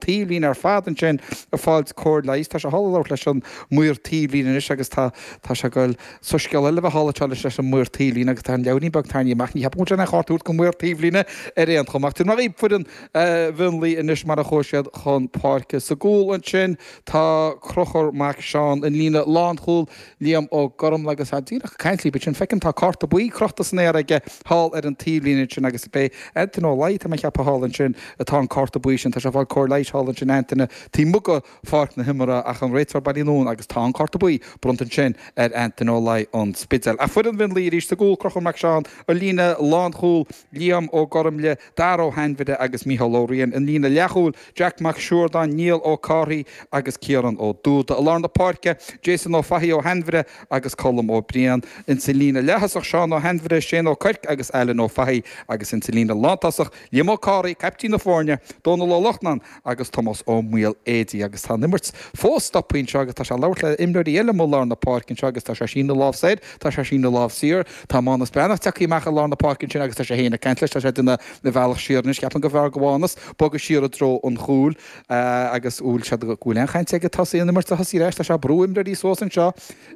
taobhlíne ar fad ansin ag fáilt cóir leighis. Tá sé thall ag labhairt leis an maor taobhlíne anois agus tá tá sé ag goil. Soiscéal eile a bheith thall anseo anois leis an maor taobhlíne agus tá an leabhairín beag tarraingthe amach. Ní cheapaim go bhfuil sé in ann cárta a thabhairt go maor taobhlíne ar aon chuma. Ach sin mar a bhí foireann Mhionlaigh anois mar a chuaigh siad chun páirce. Sa gcúl ansin tá Crochúr Mac Seáin an líne lánchúil. Liam Ó Gormaile, Agus tá díreach ag caint libh ansin, feicim tá cárta buí crochta san aer aige thall ar an taobhlíne ansin agus b'é Antaine Ó Laidhe, tá mé a cheapadh, thall ansin atá an cárta buí sin. Tá sé ag fáil cóir leighis thall ansin Antaine taobh amuigh de pháirc na himeartha ach an réiteoir bailithe anonn agus tá an cárta buí bronnta ansin ar Antaine Ó Laidhe an Spidéil. Ach foireann Mhionlaigh arís sa gcúl, Crochúr Mac Seáin an líne lánchúil, Liam Ó Gormaile, Daire Ó hAinmhire agus Micheál Ó Riain, an líne leathchúil, Jack Mac Siúrdáin, Niall Ó Cárthaigh agus Ciarán Ó Dúda, i lár na páirce, Jason Ó Fathaigh, Ó hAinmhire agus Colm Ó Briain, insa líne leaththosach, Seán Ó hAinmhire, Shane Ó Cuirc agus Ailean Ó Fathaigh, agus insa líne lántosach, Liam Ó Cárthaigh, caiptín na foirne, Dónal Ó Lochnáin agus Tomás Ó Maoiléidigh agus tá an imirt fós stoptha anseo agus tá sé ag labhairt le imreoirí eile amuigh i lár na páirce anseo agus tá sé ag síneadh lámh soir, tá sé ag síneadh lámh siar, tá Mánus Breathnach tagtha amach i lár na páirce ansin agus tá sé féin ag caint leis, tá sé ag déanamh a bhealach siar anois, ceapaim gurbh fhearr go Mhánus bogadh siar i dtreo an chúil agus níl a fhios agam bhfuil aon chaint aige fós an imirt a thosaí ar ais, tá sé ag brú imreoirí suas anseo,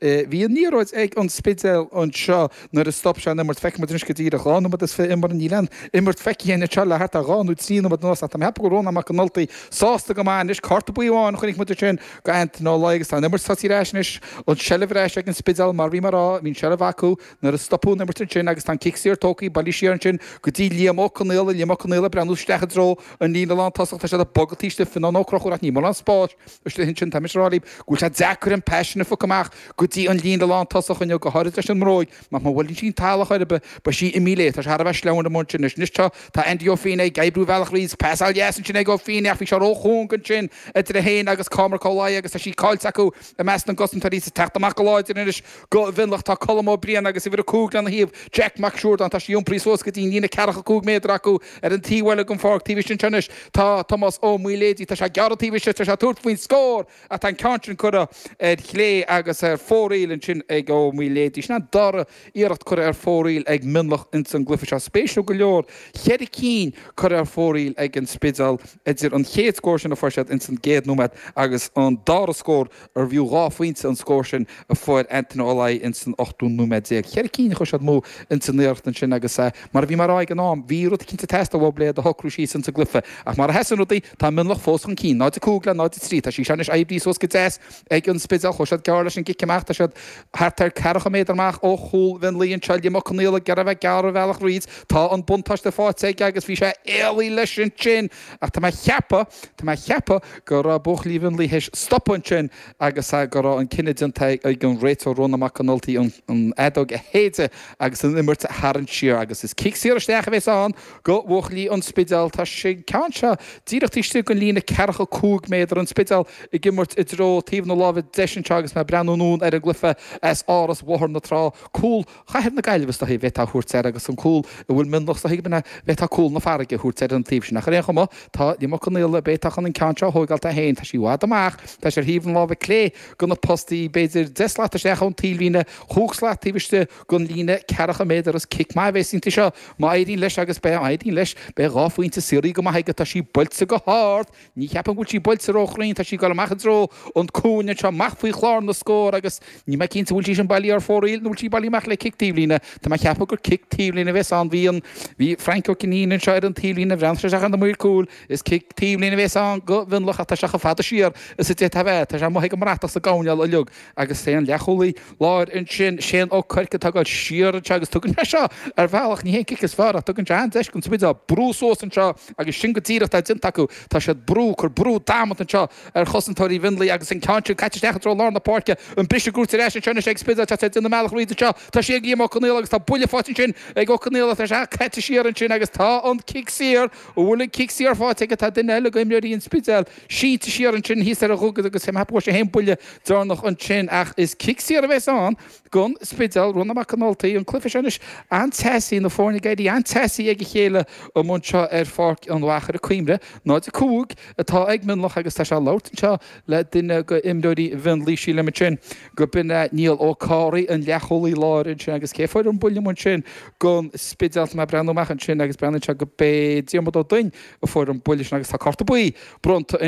Bhí an liathróid ag An Spidéal anseo nuair a stop sé an imirt. Feicfidh muid anois go díreach. Dhá nóiméad is fiche imeartha. Níl aon imirt feicthe againn anseo le thart ar dhá nó trí nóiméad anuas ach tá mé ceapadh go bhfuil Rónán Mac an Ultaigh sásta go maith anois. Cárta buí amháin a chonaic muid ansin go Antaine Ó Laidhe agus tá an imirt tosaithe ar ais anois. An tseilbh ar ais ag An Spidéal mar bhí mé a rá. Bhí an tseilbh acu nuair a stopadh an imirt ansin agus tá an cic saor tógtha bailithe siar ansin go dtí Liam Ó Conaola. Liam Ó Conaola ag breathnú isteach i dtreo an líne lántosaigh. Tá siad ag bogadh taobh istigh. Fionnán Ó Crochúir ach níl mórán spáis. Istigh ansin tá mise a rá libh go bhfuil sé deacair na pasanna a phiocadh amach go dtí an líne lántosach inniu, go háirid leis an mbróig, mar má bhuaileann sí an talamh chor ar bith, beidh sí imí léi. Tá sé thar a bheith sleamhain amuigh ansin. Anois, anois, tá, tá Andy Ó Finné ag oibriú a bhealach thríd. Pas an-deas ansin ag Ó Finné ach bhí sé róchúng ansin idir é féin agus Cormac Ó Laidhe agus tá sí caillte acu i measc na gcosantóirí. Is ag teacht amach go láidir anois Go Mhionlach tá Colm Ó Briain agus uimhir a cúig lena thaobh, Jack Mac Siúrdáin. Tá sí iompraithe suas go dtí'n líne ceathracha cúig méadar acu ar an taobh eile den pháirc. Taobh istigh anseo anois tá Tomás Ó Maoiléidigh. Tá sé gearradh taobh istigh. Tá sé ag tabhairt faoin scór ach tá an ceann sin curtha ar chlé agus ar fóraoil ansin ag Ó Maoiléidigh. Sin an dara iarracht curtha ar fóraoil ag Mionlach ins an gcluife seo. Spéisiúil go leor cheithre cinn curtha ar fóraoil ag An Spidéal idir an chéad scór sin a fuair siad ins an gcéad nóiméad agus an dara scór arbh fhiú dhá phointe an scór sin a fuair Antaine Ó Laidhe ins an ochtú nóiméad déag. Cheithre cinn a chuir siad amú ins an iarracht ansin agus, mar a bhí mé a rá ag an am, bhí rud eicínt ag teastáil uathub le iad a shocrú síos ins an gcluiche. Ach mar a sheasann rudaí, tá Mionlach fós chun cinn, 0-5 le 0-3. Tá sé seo anois oibrithe suas go deas ag an Spidéal. Chuaigh siad gearr leis an gcic amach. Tá siad thart ar ceathracha méadar amach ó chúl Mhionlaigh anseo. Liam Ó Conaola ag iarraidh a bheith ag gearradh a bhealach thríd. Tá an buntáiste faighte aige agus bhí sé éalaithe leis ansin. Ach tá mé a cheapadh, tá mé a cheapadh go raibh buachaillí Mhionlaigh stoptha ansin agus go raibh an cinneadh déanta ag an réiteoir Rónán Mac an Ultaigh an fheadóg a shéideadh agus an imirt a tharraingt siar agus is cic saor isteach a bhéas ann go bhuachaillí an Spidéil. Tá sé ceann seo díreach istigh den líne ceathracha cúig méadar, an Spidéal ag imirt i dtreo taobh na láimhe deise anseo agus mé ag breathnú anonn ar an gcluiche as Áras Bhóthar na Trá, cúl chathair na Gaillimhe is dóichí go bhféadfá a thabhairt air agus an cúl a bhfuil Mionlach is dóichí go bhféadfá cúl na farraige a thabhairt ar an taobh sin ach ar aon chuma tá Liam Ó Conaola a bhféadfá chun an ceann seo a thóigeáil dó féin tá sí i bhfad amach tá sí ar thaobh na láimhe clé de na postaí b'fhéidir deich slat isteach ón taobhlíne chúig slat taobh istigh den líne ceathracha méadar is cic maith a bhéas inti seo má éiríonn leis agus beidh má éiríonn leis beidh dhá phointe saothraithe go maith aige tá sí buailte go hard Ní cheapaim go bhfuil sí buailte ró chruinn, tá sí ag dul amach i dtreo an cúinne anseo amach faoi chlár na scór agus níl mé cinnte an bhfuil sí sin bailí ar fóraoil nó bhfuil sí bailí amach le cic taobhlíne. Tá mé a cheapadh gur cic taobhlíne a bhéas ann, bhí an, bhí Frank Ó Cinnín anseo ar an taobhlíne a bhreathnaigh sé isteach ar na maoir cúil, is cic taobhlíne a bhéas ann go Mhionlach ach tá sé chomh fada siar is a d'fhéadfadh a bheith, tá sé amuigh ag an mbratach sa gcoirnéal uiliug. agus is é an leathchúlaí láir ansin, Shane Ó Cuirc, atá ag dul siar anseo agus tugann sé seo, ar bhealach, ní hé an cic is fearr ach tugann sé an-deis don Spidéal brú suas anseo agus sin go díreach atá déanta acu, tá siad brú, cur brú damanta anseo ar chosantóirí Mhionlaigh agus an ceann sin caite isteach i dtreo lár na páirce, an briseadh gaois ar ais anseo anois ag Spidéal, tá siad ag déanamh a mbealach tríd anseo, tá sí ag Liam Ó Conaola agus tá buille faighte ansin ag Ó Conaola, tá sé caite siar ansin agus tá an cic saor, an bhfuil an cic saor faighte aige, tá duine eile go imreoirí an Spidéil sínte siar ansin thíos ar an dhugaid agus tá sé fhéin buille deireanach ansin ach is cic saor a bhéas ann gon Spidéal, Rónán Mac an Ultaigh, an cluiche seo anois, an-teasaí, na foirne ag éirí an-teasaí ag a chéile amuigh anseo ar Pháirc an Mhachaire, cuimhnigh 0-5 atá ag Mionlach agus tá sé ag labhairt anseo le duine go imreoirí Mhionlaigh sílim ansin gurb in é Niall Ó Cárraidh an leathchúlaí láir ansin agus cé fuair an buille amuigh ansin gon Spidéal mé ag breathnú amach ansin agus breathnaíonn sé gurb é Diarmuid Ó Doinn a fuair an buille sin agus tá cárta buí bronnta